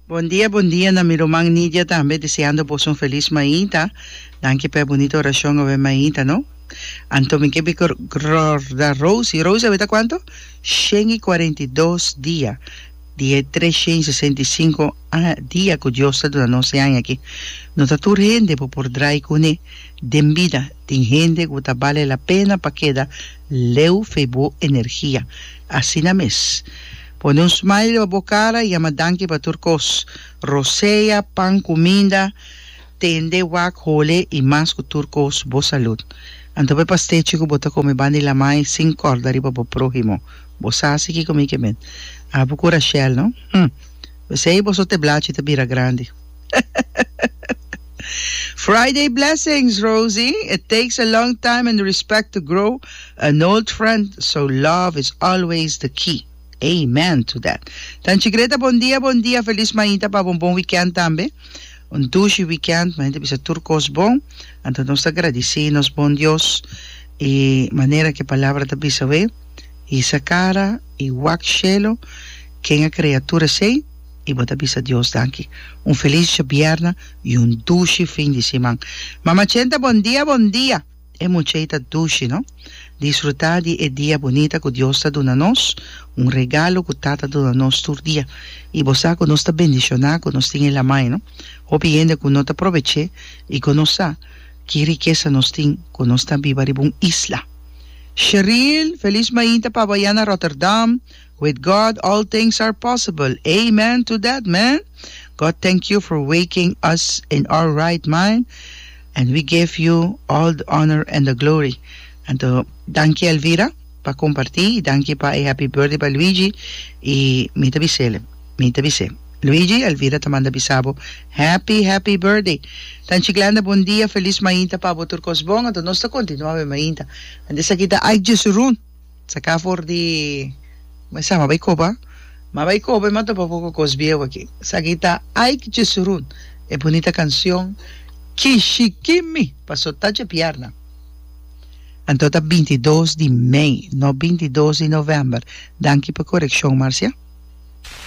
Bondia bondia na mi ruman Nidia tambe deseando boso un feliz mainta danki pa e bunito oracion obe mainta no anto mi ke bi rorda Rosy Rosy a beta cuanto shen y cuarenta y dos dia di e treshen y sesenta y cinco dia cu Dios ta duna nos e aña aki no ta tur hende bo por drai cune den bida tin hende cu ta bale la pena pa keda leu fe bo energia asina mes Pone un smile pa bo cara y ama danki pa tur cos. Rosea, pan cu minda, tende, wak, hole y mas cu tur cos. Bo salud. Anto pa e pastechi cu bo ta come banda di lamai sin corda riba bo prohimo. Bo sa haci kico mi ke men. Abu cu Rashel no. Hm. P'esey bo so te blachi ta bira grandi. Friday blessings Rosie, it takes a long time and respect to grow an old friend so love is always the key amen to that Tanchi Greta bon dia bon dia feliz mainta pa bo un bon weekend tambe un dushi weekend mainta bisa tur kos bon anto nos ta gradisi nos bon Dios y manera ki e palabra ta bisa we hisa kara y wak shelo ken a crea tur esey I bo ta bisa Dios danki. Un felis djabièrna i un dushi fin di siman. Mama Chenta bon dia bon dia. E muchei ta dushi no. Disfrutá di e dia bunita ku Dios ta duna nos, un regalo ku Tata duna nos tur dia. I bo sa ku nos ta bendishoná ku nos tin e lamai no. Hopi hende ku no ta probech'é i ku no sa ki rikesa nos tin ku nos ta biba riba un isla. Sheril, felis mainta pa bo ayá na Rotterdam. With God all things are possible amen to that man God thank you for waking us in our right mind and we give you all the honor and the glory anto danki Elvira pa comparti y danki pa e happy birthday pa Luigi y mi ta bisele mi ta bise Luigi Elvira ta manda bisabo happy happy birthday tan chiclenda bon dia feliz mainta pabo tur cos bon anto nos ta continua awe mainta anto esaki ta ay jesurun. Saká for di mi sama bai koba. Ma bai koba i ma topa poko kos bieu aki. Esaki ta Ike Jesurun e bunita kansion Kishikimi pa so tachi e pièrna. Anto ta binti i dos di mei, no binti i dos di novèmber. Danki pa korekshon, Marcia.